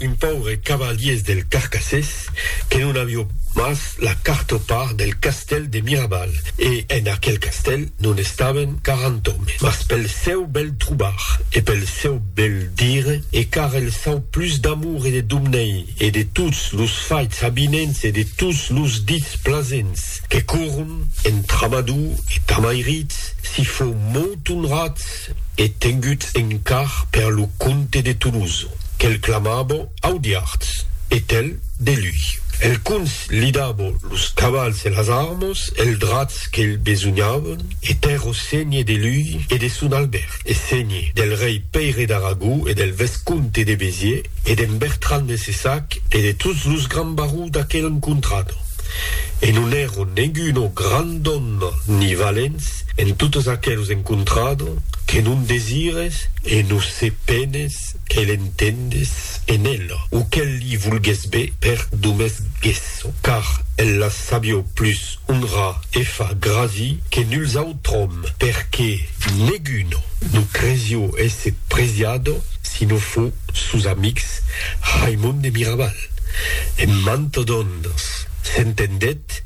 Un paure cavaliers del Carcassés que non avió mas la quarta part del castèl de Mirabal, e en aquel castèl non estaven 40 òmes, mas pel sèu bèl trobar e pel sèu bèl dire, e car el sau plus d'amor e de domnei e de tots los faits avinents e de tots los dits plasents que corron entre Amador e Tamairits, si fou molt onrat, e tenguts en car per lo comte de Toulouse, que'l clamabo Audiards, e tel de lui. El comts li dabo los cavals e las armas e els drats qu'elh besognàvon, e per o ségne de lui e de son Albert, e ségne del rei Pèire d'Aragó e del vescomte de Béziers, e d'en Bertran de Cessac e de tots los grands barons d'aquela encontrada, e non èron neguno grand òme ni valents, En totes aqueles encontrado que non desires e no se penes que l'entendes en ella o que li volgues be per domes gesso, car ella sabió plus honrar e fa grasi que nuls autr'òm, perque neguno no cresió esse presiado si no fo sos amics Raimond e Mirabal. En mante dònnes s'entendèt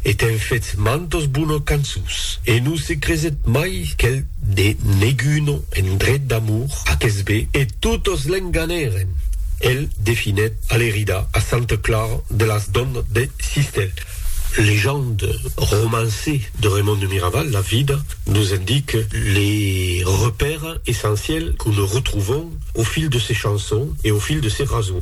E t'èn fets mantas bonas cançons. E non se creset mai qu'el ne neg una en dret d'amor a Kesbé e totas l'enganèren. El definèt Alerida a Santa Clara de las Donnas de Sistèl. Legende, romançe de Raimond de Miraval, La Vida, nos indique les repères essentiels que ne retrouvons au fil de ses chansons e au fil de ses rasons.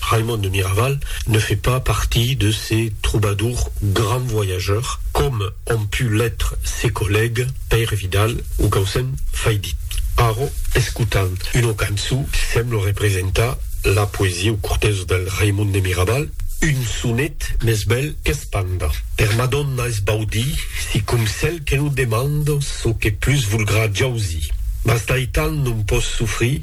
Raimond de Miraval ne fait pas partie de ces troubadours grands voyageurs, comme ont pu l'être ses collègues Pèire Vidal o Caucen Faidit. Arro, escotam una cançó qui semble representar la poesia o cortesa del Raimond de Miraval, un sonet mès bèl qu'es panda. Per Madonna es baudi, si com cèl que non demanda çò que plus volgrà jausir. Mas d'aital non pòs sofrir.